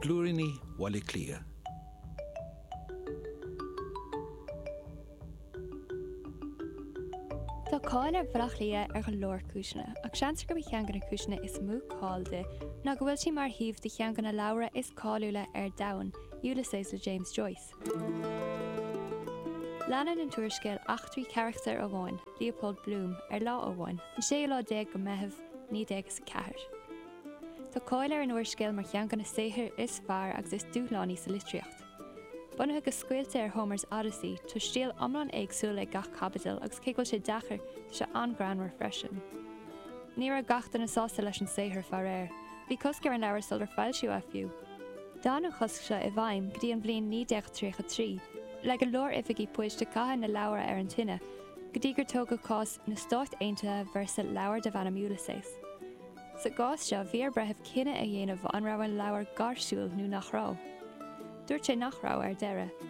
Blúiríní Bhaile Átha Cliath. Tá cáil ar Bhaile Átha Cliath ar go leor cúiseanna, ach seans gurb í cheann de na cúiseanna is mó cáil di ná go bhfuil sí mar shuíomh do cheann de na leabhra is cáiliúla ar domhan, Ulysses le James Joyce. Leanann an t-úrscéal eachtraí carachtair amháin, Leopold Bloom, ar lá amháin, an séú lá déag de Mheitheamh, naoi déag is a ceathair. Tá cáil ar an úrscéal mar cheann de na saothair is fearr agus is dúshlánaí sa litríocht. Bunaithe go scaoilte ar Homer's Odyssey, tá stíl iomlán éagsúil ag gach caibidil agus cé go bhfuil sé deacair, tá sé an-ghreannmhar freisin. Ní raibh gach duine sásta leis an saothar, faraor. Bhí cosc ar an leabhar sular foilsíodh é fiú. D'fhan an chosc seo i bhfeidhm go dtí an bhliain 1933, le go leor oifigí poist ag caitheamh na leabhar ar an tine, go dtí gur tógadh cás Na Stáit Aontaithe vs. Leabhar Darb Ainm Ulysses. Sa gcás seo, bhí ar breitheamh cinneadh a dhéanamh an raibh an leabhar gáirsiúil nó nach raibh. Dúirt sé nach raibh, ar deireadh.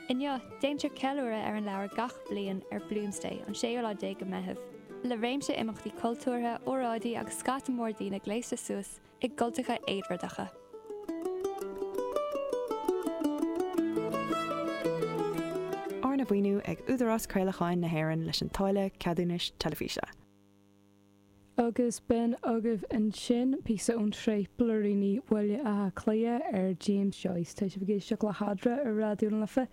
Inniu, déantar ceiliúradh ar an leabhar gach bliain ar Bloomsday, an séú lá déag de Mheitheamh, le réimse imeachtaí cultúrtha, óráidí agus scata mór daoine gléasta suas i gcultacha Éadbhardacha. Arna mhaoiniú ag Údarás Craolacháin na hÉireann leis an táille ceadúnais teilifíse. Agus b'in agaibh ansin píosa ón tsraith Blúiríní Bhaile Átha Cliath ar James Joyce. Tá sibh ag éisteacht le hEadra ar Raidió na Life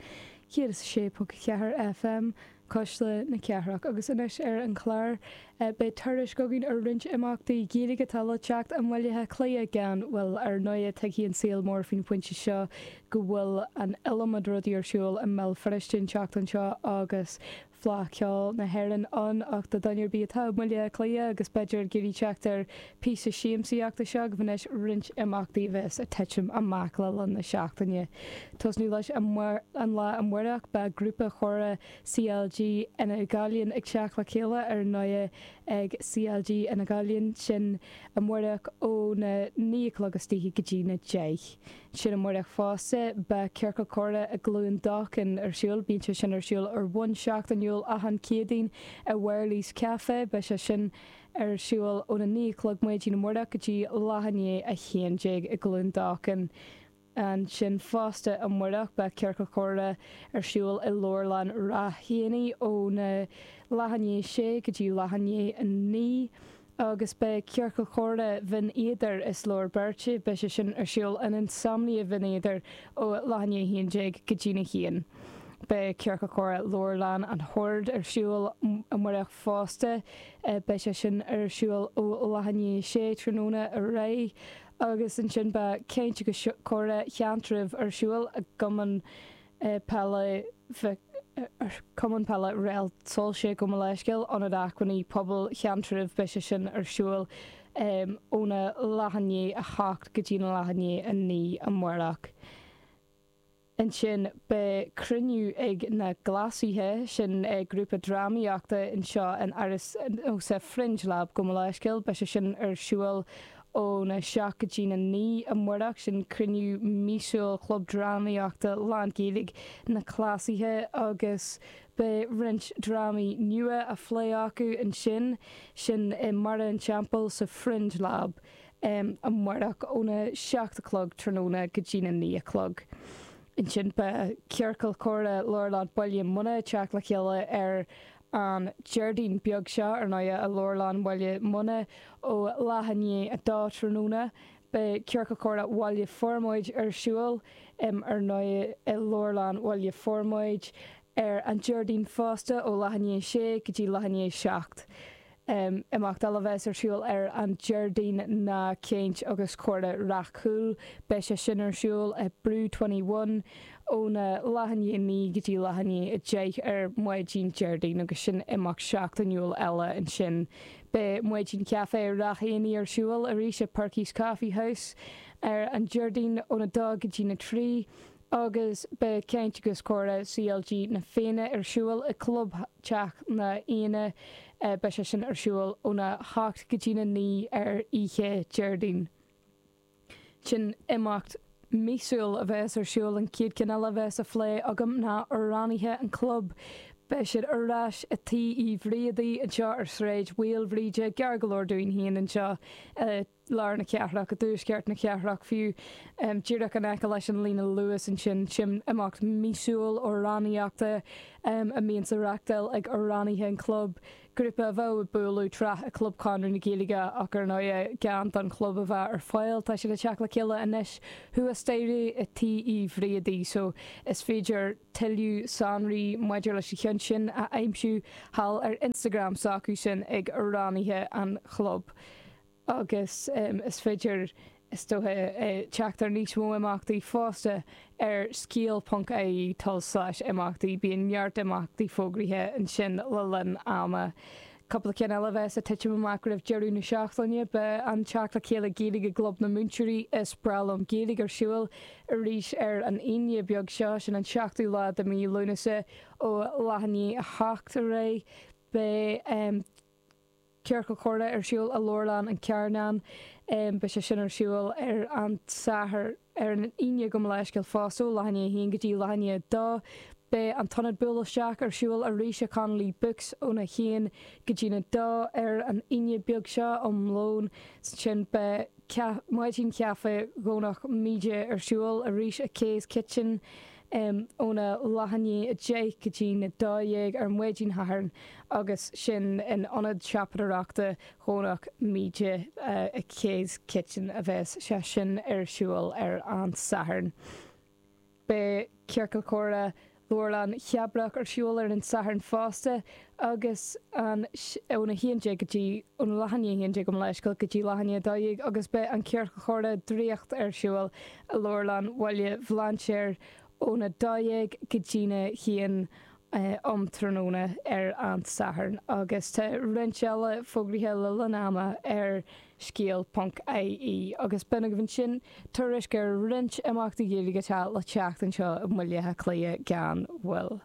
106.4 FM. Cuisle na Cathrach. Agus anois ar an chlár beidh tuairisc againn ar roinnt imeachtaí Gaeilge atá le teacht i mBaile Átha Cliath gan mhoill. Ar ndóigh, tuigfidh an saol mór faoin bpointe seo go bhfuil an iliomad rudaí ar siúl i mBéal Feirste an tseachtain seo agus Fleadh Cheoil na hÉireann ann ach do dhuine ar bith atá i mBaile Átha Cliath agus b'fhéidir ag iarraidh teacht ar Píosa siamsaíochta Seo agaibh anois roinnt imeachtaí a bheas ag titim amach le linn na seachtaine. Tosnú leis an lá amárach beidh grúpa chomhrá CLG Fhine Ghallainn ag teacht le chéile ar ndóighe ag CLG Fhine Ghallainn sin amárach óna naoi a chlog istoíche go dtí na deich. Sin amárach fosta beidh Ciorcal Comhrá i gCluain Dolcáin ar siúl. Bíonn sé sin ar siúl ar bhonn seachtainiúil achan Céadaoin i bhFairley's Café. Beidh sé sin. ar siúl óna naoi a chlog maidin amárach go dtí leath i ndiaidh a haon déag i gCluain Dolcáin. Ansin fosta amárach beidh Ciorcal Comhrá ar siúl i Leabharlann Ráth Eanaigh óna leath i ndiaidh a sé go dtí leath i ndiaidh a naoi agus beidh Ciorcal Comhrá Bhinn Éadair, Is Leor Beirt, beidh sé sin ar siúl in Insomnia Bhinn Éadair ó leath i ndiaidh a haon déag go dtína haon. Beidh Ciorcal Comhrá Leabharlann Shoird ar siúl amárach, fosta. Beidh sé sin ar siúl ó leath i ndiaidh a sé tráthnóna ar aghaidh agus ansin beidh caint agus comhrá Sheantraibh ar siúl i gCumann Peile Mhic Cumann Peile Réaltsoilse gabh mo leithscéal, Ionad Acmhainní Pobail Sheantraibh beidh sé sin ar siúl óna leath i ndiaidh a hocht go dtína leath i ndiaidh a naoi amáireach. Ansin beidh cruinniú ag na Cleasaithe, sin é grúpa drámaíochta anseo in Áras, sa, Fringe Lab, gabh mo leithscéal. Beidh sé sin ar siúl óna 7 go dtína 9 amáireach. Sin cruinniú míosúil Chlub Drámaíochta lán Gaeilge na Cleasaithe agus beidh roinnt drámaí nua á phlé acu ansin. Sin i mBarra an Teampaill sa Fringe Lab. um amárach óna seacht a chlog tráthnóna go dtína naoi a chlog. Ansin beidh ciorcal comhrá Leabharlann Bhaile Munna ag teacht le chéile ar an Déardaoin beag seo, ar ndóigh, i Leabharlann Bhaile Munna ó leath i ndiaidh a dó tráthnóna. Beidh ciorcal comhrá Bhaile Formaid ar siúl, um ar ndóigh, i Leabharlann Bhaile Formaid ar an Déardaoin fosta ó leath i ndiaidh a sé go dtí leath i ndiaidh a seacht. Imeacht eile bheas ar siúl ar an Déardaoin ná Caint agus Comhrá Ráth Cúil. Beidh sé sin ar siúl i Brew Twenty One óna leath i ndiaidh a naoi go dtí leath i ndiaidh a deich ar maidin Déardaoin agus sin imeacht seachtainiúil eile ansin. Beidh Maidin Caife Ráth Eanaigh ar siúl arís i Perky's Coffee House ar an Déardaoin óna dó go dtí na trí. agus beidh caint agus comhrá CLG Na Fianna ar siúl i gClubtheach Na Fianna, beidh sé sin ar siúl óna hocht go dtína naoi ar oíche Déardaoin. Sin imeacht míosúil a bheas ar siúl, an chéad cheann eile a bheas á phlé agam ná amhránaithe an chlub. Beidh siad ar ais i Tí Uí Bhríodaigh anseo ar Sráid Mhaoilbhríde, gar go leor dúinn féin anseo i. lár na cathrach, i dtuaisceart na cathrach fiú, díreach in aice leis an líne Luas ansin. Sin imeacht míosúil amhránaíochta a mbíonn á reachtáil ag amhránaithe an chlub, grúpa a bheadh ag bualadh tráth i gClub Chonradh na Gaeilge ach ar ndóigh gan don chlub a bheith ar fáil. Tá siad ag teacht le chéile anois thuas staighre i Tí Uí Bhríodaigh so is féidir tuilleadh sonraí maidir leis an cheann sin a aimsiú thall ar Instagram s'acu sin ag amhránaithe an chlub. agus is féidir, is dócha, teacht ar níos mó imeachtaí fosta ar scéal.ie, tulslais imeachtaí. Bíonn neart imeachtaí fógraithe ansin le linn ama. Cúpla ceann eile a bheas ag titim amach roimh deireadh na seachtaine, beidh an teacht le chéile Gaeilge i gClub na Múinteoirí Is Breá Liom Gaeilge ar siúl arís ar an Aoine beag seo, sin an 7ú lá de mhí Lúnasa, ó leath i ndiaidh a hocht ar aghaidh. Beidh. Ciorcal Comhrá ar siúl i Leabharlann an Chearnainn. Beidh sé sin ar siúl ar an Satharn, ar an Aoine gabh mo leithscéal fosta, ó leath i ndiaidh a haon go dtí leath i ndiaidh a dó. Beidh an t-ionad buail isteach ar siúl arís i Connolly Books óna haon go dtí a dó ar an Aoine beag seo um lón. Ansin beidh Maidin Chaife Dhomhnach Míde ar siúl arís i Kay's Kitchen. em óna leath i ndiaidh a 10 go dtí na 12 ar mhaidin Shathairn agus sin in Ionad Siopadóireachta Dhomhnach Míde i Kay's Kitchen a bheas sé sin ar siúl ar an Satharn. Beidh Ciorcal Comhrá Leabharlann Chabrach ar siúl ar an Satharn fosta agus an ó na haon déag go dtí ó na leath i ndiaidh a haon déag gabh mo leithscéal go dtí leath i ndiaidh a dó dhéag agus beidh an Ciorcal Comhrá Draíocht ar siúl i Leabharlann Bhaile Bhlainséir ón a dó dhéag go dtí a haon um tráthnóna ar an Satharn agus tá roinnt eile fógraithe le linn ama ar scéal ponc ie agus b'in agaibh ansin tuairisc ar roinnt imeachtaí Gaeilge atá le teacht anseo i mBaile Átha Cliath gan mhoill.